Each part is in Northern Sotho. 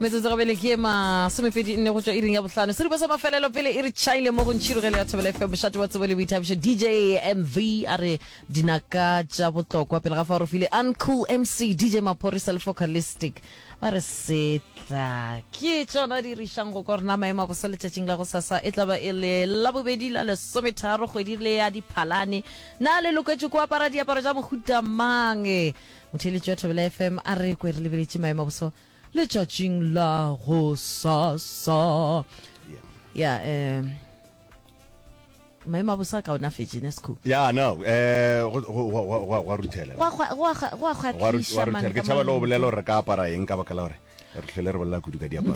metsotso go bele ke masomepedi nne go tswa iring ya botlhano seripa sa mafelelo pele e re chaile mo go ntšhirogelo ya thobela fm mošate wa tsebo le boithabišo dj mv a re dinaka tša botlokwa pele ga fa re file uncool mc dj maphorisa le focalistic ba re setla ke tsona di rišang go ka rena maemo a bosa letšatšing la go sasa e tlaba e le labobedi la lesometharo kgwedi le ya diphalane na le loketše ko apara diaparo tša mohuta mang Motheeletši wa Thobela FM a re kwe re lebeletše maemo a boso letšatšing la go sasa ya um maemo a boso a kaonafetše nesco ya no um go- go- go- go- go- go a ruthela go a kgwa- go a kgwa- go a Wa ru- wa kgwatliša ruthela. ke tšhaba le go bolela gore re ka apara eng ka baka la gore re hlole re bolela kudu ka diaparo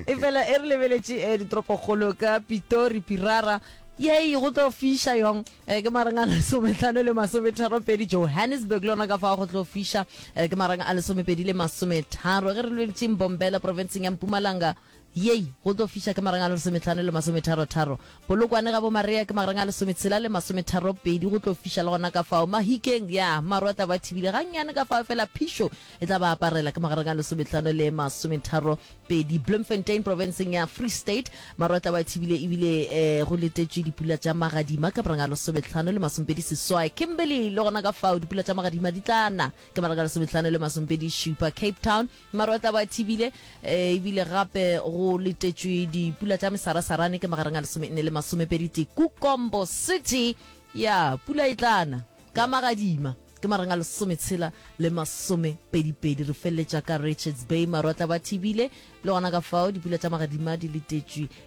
e fela e re lebeletše um eh, ditoropokgolo ka pitori pirara yei go tlo fiša yong um ke marang a lesometlhano le masometharo pedi johannesburg le yona ka fa go tlo fiša um ke marang a lesomepedi le masometharo ge re lweletseng bombela provinceng ya mpumalanga Yei, go tlo fiša ka magareng a lesometlhano le masometharotharo. Polokwane ga Bomaria ke magareng a lesometshela le masometharopedi, go tlo fiša le gona ka fao. Mahikeng, ya, maru a tla ba thibile gannyane ka fao, efela phišo e tla ba aparela ka magareng a lesometlhano le masometharopedi. Bloemfontein, profenseng ya Free State, maru a tla ba thibile ebile e, go letetšwe dipula tša magadima ka magareng a lesometlhano le masompedi seswai. Kimberley, le gona ka fao, dipula tša magadima di tla na ka magareng a lesometlhano le masompedi šupa. Cape Town, Marwetla ba thibile, e bile gape go letetšwe dipula tša mesarasarane ke magareng a lesomenne le masomepedi tee Kukombo City. Ya, pula e tla na ka magadima ke magareng a lesometshela le masomepedipedi. Re feleletša ka Richards Bay, marwetla ba thibile le gona ka fao, dipula tša magadima di letetšwe.